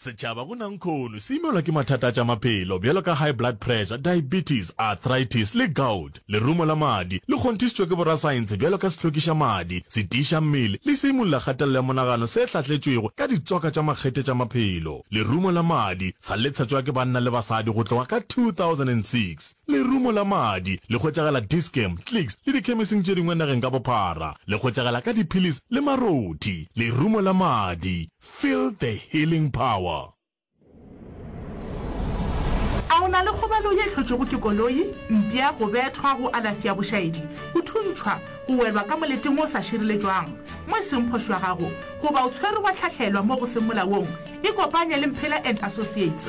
Setšhaba go nankhono se imelwa ke mathata a tša maphelo bjalo ka high blood pressure, diabetes, arthritis le gout. Lerumo la madi le kgonthišitšwe ke borasaentshe bjalo ka sehlokiša madi, setiiša mmele le seimolola kgatelelo ya monagano se hlatletšwego ka ditsoka tša makgethe tša maphelo. Lerumo la madi sa letshetšwa ke banna le basadi go tloga ka 2006. Lerumo la madi le hwetšagala Dischem, Clicks le dikhemising tše dingwe nageng ka bophara. Le hwetšagala ka diphillis le marothi. Lerumo la madi, feel the healing power. A o na le kgobalo ye e hlotšwego ke koloi, mpša, go bethwa, go alafi ya bošaedi, go thuntšhwa, go welwa ka moleting wo o sa šireletšwang mo e seng phošo ya gago, goba o tshwerwe wa hlahlelwa mo go seng molaong? Ikopanye le Mphela and Associates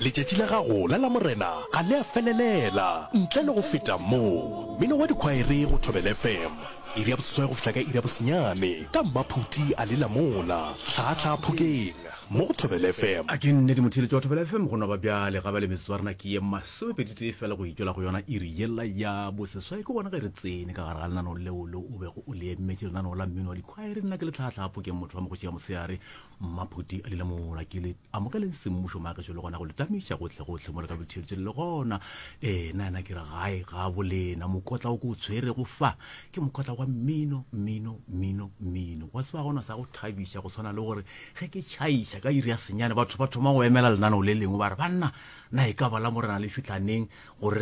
Letšatši la gago la Lamorena ga le a felelela ntle le go feta mo. Mmino wa dikhwaere go Thobela FM, iri ya boseswai go fihla ka iri ya bosenyane ka Mmaphuti a lela mola hlaahlaa Phokeng mo go Thobela FM. A ke nnete motheeletši wa Thobela FM go no ba bjale ga ba le metsotso ya rena ke ye masomepeditee feela go e tšwela go yona iri yela ya boseswai ke gona ge re tsene ka gare ga lenaneo leo le o bego o le emetše lenaneo la mmino wa dikhwaere nna ke le hlaahlaa Phokeng motho wa mogoši ya motshehare Mmaphuti a lela mola ke le Amogeleng semmušo maagišo le gona go le tamiša gohle-gohle mo le ka botheletšeng le gona. Ee, na na ke re gae ga bolena. Mokotla o ke o tshwerego fa ke mokotla wa mmino, mmino, mmino, mmino. Wa tseba gona sa go thabiša go tshwana le gore ge ke tšhaiša ka iri ya senyane batho ba thoma go emela lenaneo le lengwe ba re, Banna, na e ka ba la Morena le fitlha neng gore